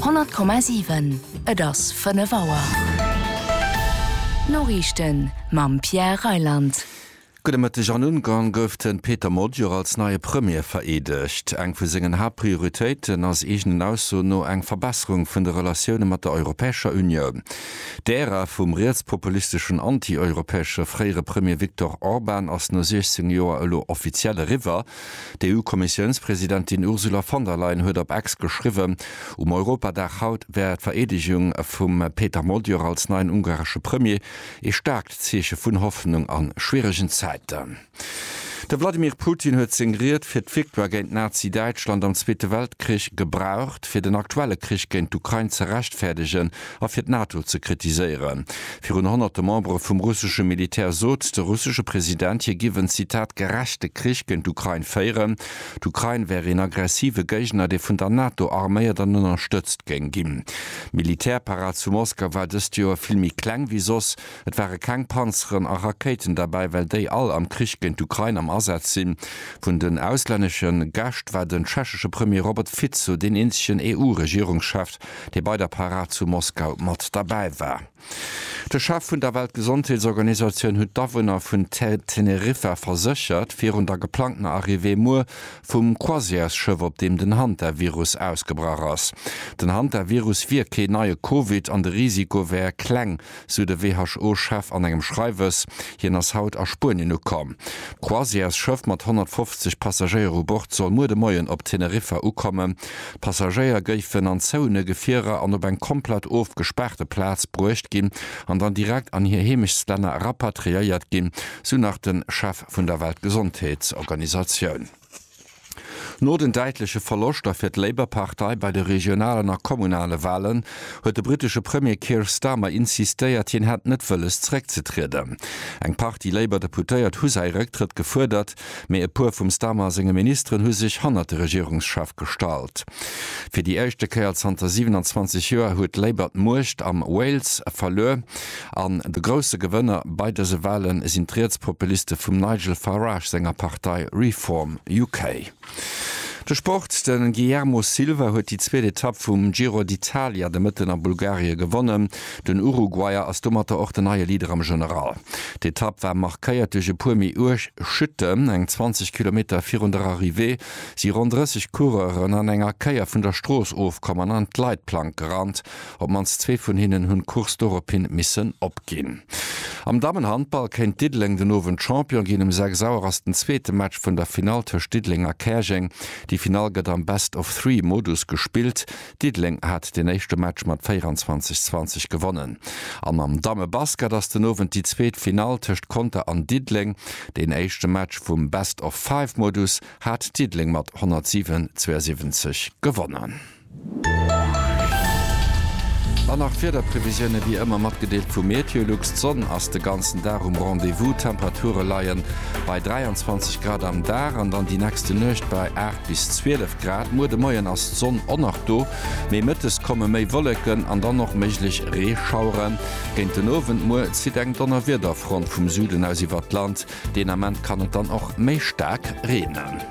100,7 Et ass 5 Auer. D'Noriichten mam Pierre Reyland. Gudde Mëtteg. An Ungarn gouf de Peter Magyar als neie Premier vereedegt. Eng vu sengen Haaptprioritéiten ass eegenen Aussoen no eng Verbesserung vun de Relatioune mat der Europäescher Unioun. D'Ära vum rietspopulisteschen, anti-europäesche fréiere Premier Viktor Orban ass no 16 Joer elo offiziell eriwwer. D'EU-Kommissiounspresidentin Ursula von der Leyen huet op X geschriwwen, um Europadag haut wär d'Vereedegung vum Peter Magyar als neien ungaresche Premier ee staarkt Zeeche vun Hoffnung a schwieregen Zäiten. De Wladimir Putin huet seng Ried fir d'Victoire géint Nazi-Däitschland am Zweete Weltkrich gebraucht, fir den aktuelle Krich géint d'Ukrain ze rechtfäerdegen, a fir d'NATO ze kritiséieren. Virun honnerte Membere vum russesche Militär sot de russesche President, hie giff en, Zitat, gerechte Krich géint d'Ukrain féieren. D'Ukrain wär een aggressive Géigner, dee vun der NATO arméiert an ënnerstëtzt géing ginn. D'Militärparad zu Moskau war dëst Joer vill méi kleng wéi soss. Et ware keng Panzeren a Rakéiten derbäi, well déi all am Krich géint d'Ukrain am Asaz sinn. Vun den auslännesche Gäscht war den tschechesche Premier Robert Fico deen eenzegen EU-Regierungschef. dee bei der Parad zu Moskau mat derbäi war. De Chef vun der Weltgesondheetsorganisatioun huet d'Awunner vun Teneriffa verséchert, virun der geplangtener Arrivée muer vum Croisièresschëff, op deem den Hantavirus ausgebrach ass. Den Hantavirus wier keen neie Covid an de Risiko wär kleng, sou de WHO-Chef an engem Schreiwes. Hien ass haut a Spuenien ukomm. D'Croisièresschëff mat 150 Passagéier u Bord soll muer de Moien op Teneriffa ukommen. D'Passagéier géifen an zouene Gefierer an op eng komplett ofgespaarte Plaz bruecht ginn an dann direkt an hir Heemechtstlänner rapatriéiert ginn, sou nach de Chef vun der Weltgesondheetsorganisatioun. No den däitleche Verloschter fir d'Labour-Partei bei de regionalen a kommunale Walen, huet de brittesche Premier Keir Starmer insistéiert, hien hätt net wëlles zeréckzetrieden. Eng Partie Labour-Deputéiert hu säi Rëcktrëtt gefuerdert, mee e puer vum Starmer senge Ministeren hu sech hannert de Regierungschef gestallt. Fir déi éischte Kéier zanter 27 Joer huet Labour d'Muecht am Wales verluer an de grousse Gewënner bei dëse Wale sinn d'Rietspopuliste vum Nigel Farage senger Partei Reform UK. De Sport, De Guillermo Silva huet déi zweet Etapp vum Giro d'Italia de Mëtten a Bulgarie gewonnen. Den Uruguayer ass domatter och den neie Leader am General. D'Etapp war markéiert duerch e puer méi uerg Chutten. Eng 20 Kilometer virun der Arrivée si ronn 30 Coureuren an enger Kéier vun der Strooss ofkomm an an d'Leitplank gerannt. Op d'mannst zwee vun hinnen hunn d'Course dorophin missen opginn. Am Dammenhandball kéint Diddeleng den Owend Champion ginn. Um 6 Auer ass den zweete Match vun der Finall tëscht Diddeleng a Käerjeng. Déi Finall gëtt am Best-of-Three-Modus gespillt. Diddeleng hat den éischte Match mat 24, 20 gewonnen an am Dammebasket ass den Owend déi zweet Finall tëscht Conter an Diddeleng. Deen éischte Match vum Best of Five Modus hat Diddeleng mat 107, 72 gewonnen. An nach Wiederprevisioune wéi ëmmer matgedeelt vu Meteolux. D'Sonn ass de ganzen Dag um Rendez-vous, d'Temperature leie bei 23 Grad am Dag an dann déi nächste Nuecht bei 8. Bis 12 Grad. Muer de Moien ass d'Sonn och nach do, mee mëttes komme méi Wolleken an dann och méiglech Reeschaueren. Géint den Owend muer zitt eng Donnerwiederfront vum Süden aus iwwert d'Land. Deen Ament kann et dann och méi staark reenen.